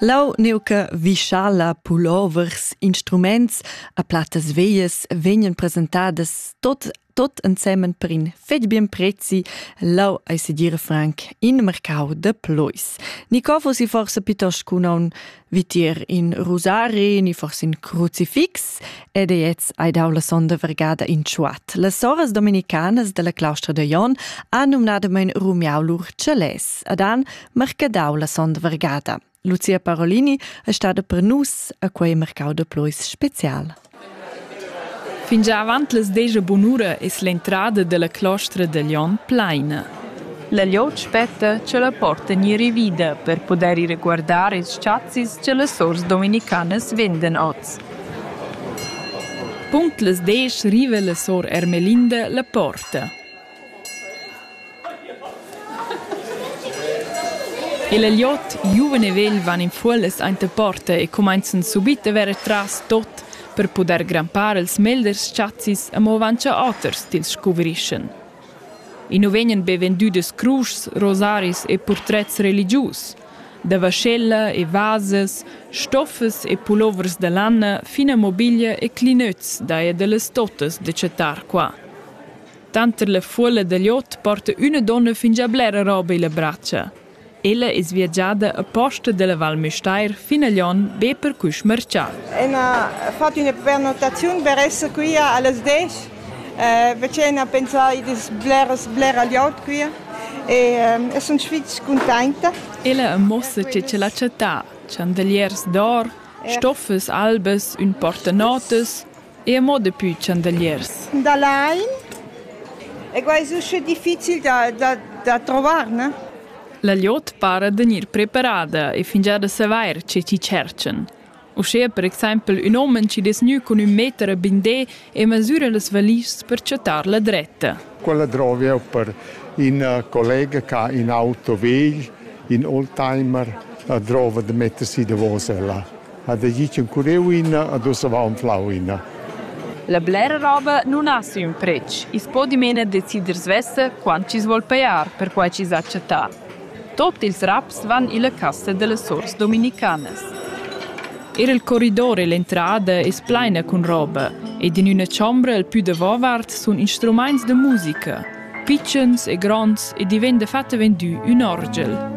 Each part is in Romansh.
Lau neuca vischala pulovers instruments a platas veias vegnan presentadas tot tot ensemen per in fetg bien prezi lau ei sedir franc in mercau de plois. Ni cofo si forse piuttosto con un vitier in rosari, ni forse in crucifix ed ei jetzt ei dau la sonda vergada in ciuat. Las soras dominicanas della claustra de Jon han numnadamain rumiau lur celès. Ad an marcadau la sonda vargada. Lucia Parolini è stata per nus a quei mercau de pluis special. Fingià avant les deja bunura es l'entrada della clostra de Lion plaina. La liot spetta che la porta ni rivida per poder ir guardare ils chazzis che le sors dominicanas venden oz. Punct les desch riva la sor Ermelinda la porta. El agliot giuven e vegl van in fuollas aint a porta e cumainzan subit da verer tras tot per pudair grampar ils meglers chazis amo avant cha oters tils scuvrischan. I nu vegnan be vendüdas cruschs, rosaris e purtrets religius. Da vaschella e vasas, stoffas e pulovers da lanna fin a mobiglia e clinöts daja da las totas da chattar qua. Tanter la fuolla da liot porta üna donna fingià blera roba illa bratscha. Ella es viagiada aposta da la Val Müstair fin a Lyon be per quist marchà. Ün ha fat üna prenotaziun per esser quia a las 10 eh, facend a pensar in das bleras blera liot quia e eh, sunt fitg cuntenta. Ella ammossa che c'è la città, chandeliers d'or, stoffes albes, ün portanotas, Eir mo daplü chandaliers. Da lain. E quai es usche difficil da, da, da trovar, ne? La glieud para da gnir preparada e fingià da savair che chi tscherchan. Uschea per exaimpel ün homen chi dess gnü cun ün meter a bindé e masüra las valischs per chattar la dretta. Quella drovi eu per ün collega ch'ha ün auto vegl, ün oldtimer, drova da metter si davos ella. ha vegì tschenculieu ina ad oz aveva anflau ina. La blera roba nun ha siu pretsch, i's po dimena decider svessa quant chi's vuol pajar per quai chi's ha chattà. Tot ils raps van illa cassa da las sors dominicanas. Er il corridor e l'entrada es plaina cun roba ed in üna chombra al pü davovart sun instrumaints da musica. pitschens e gronds e di vegn dafatta vendü ün orgel.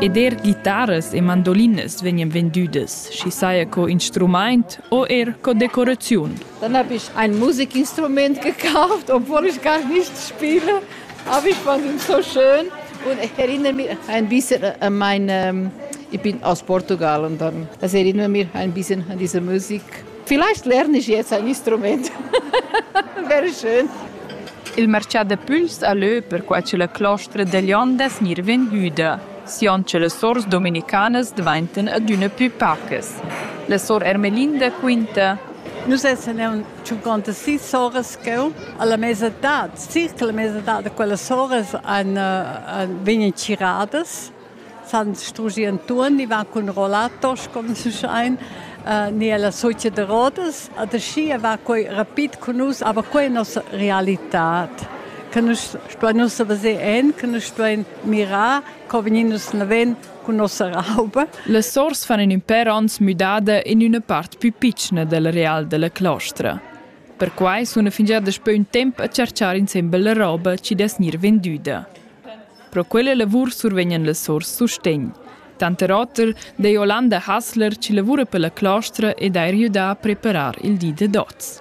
Ed er ghitaras e mandolinas vegnan vendüdas, schi saja co instrumaint o er co decoraziun. Dann habe ich ein Musikinstrument gekauft, obwohl ich gar nicht spiele. A vi quant ün so schön und ich erinnere mich ein bisschen an meine ich bin aus Portugal und dann das erinnert mich ein bisschen an diese Musik. Vielleicht lerne ich jetzt ein Instrument. Wäre schön. Il marcià de puls a lö per qua c'è la clostra degli ondas mirven hüda. Sion ce le sors dominicanas dvainten ad üna pü pacas. La sor Ermelinda quinta Nous essene un tschunconta sis soras cheu alla mesa dad circa la mesa dad da quellas soras han uh, vegnan tgiradas san strugi Anton, i va cun rollatos, come si schein, uh, ni alla socia de Rodas. Adeschia va quei rapid con nus, aber quei è nostra realità. Che nus stuein nus veser en, che nus stuein mirar, co vegnin nus naven cun nossa rauba. Las sors fan in ün per ons müdada in üna part pü pitschna del real della clostra. Perquai suna fingià daspö ün temp a cerchar insembel la roba chi dess gnir vendüda. Pro quella lavur survegnan las sors sustegn. Tanter oter dei Olanda Hassler chi lavura per la clostra ed ha riüdà a preparar il di da dots.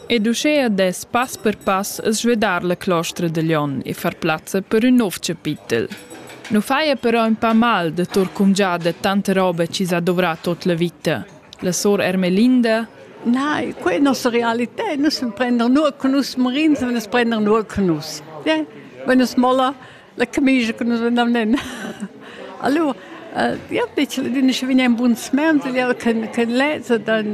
Ed uschea dess pass per pass svedar la clostra da Glion e far plazza per ün nouv chapitel. Nu faja però ün pa mal da tour cumgià da tanta roba chi s'ha dovrà tuot la vita. La sor Ermelinda Nein, quella è nostra realità. Nus prendern nur con nus morins, wenn es prendern nur con nus. Ja? Wenn es molla, La camicia che nus andavan en. Allora, ja, dice, din ich vin ein buns mens, ja, ken ken leze dann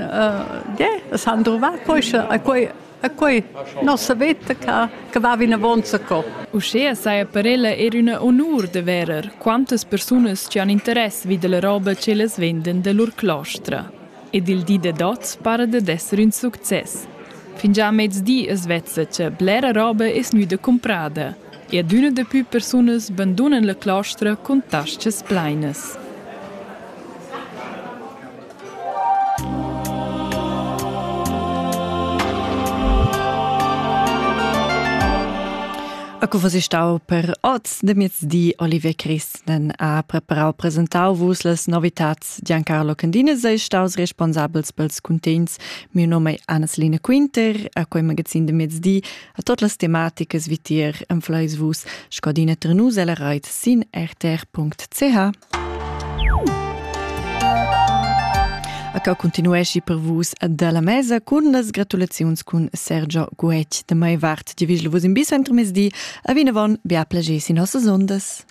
ja, das han drova quei a quei a quei nossa vetta che che va in avanza co. Uschea saja per ella er una onur de verer quantas persunas che han interess vid la roba che les venden de lur clostra. Ed il di de dots para de d'esser un succes. Fingià mezdi es vezza che blera roba es müde comprada. E adüna dapü persunas bandunan la claustra cun tas-chas plainas. A co vos stau per oz de miezdi Olivier Christen ha preparau presentau vus las novitats Giancarlo Candinas ei staus responsabels pels cuntents. Mio nome è Anna Selina Quinter, a quei magazin de miezdi A tot las tematicas vitier enfleis vus scadina trenus ella reit sin rtr.ch. A ca continuesci per vus dalla mesa cun las gratulaziuns cun Sergio Guetg de mai vart, di vigel vus in bis entramezdi, a vinavon bia plagé sin nossas ondas.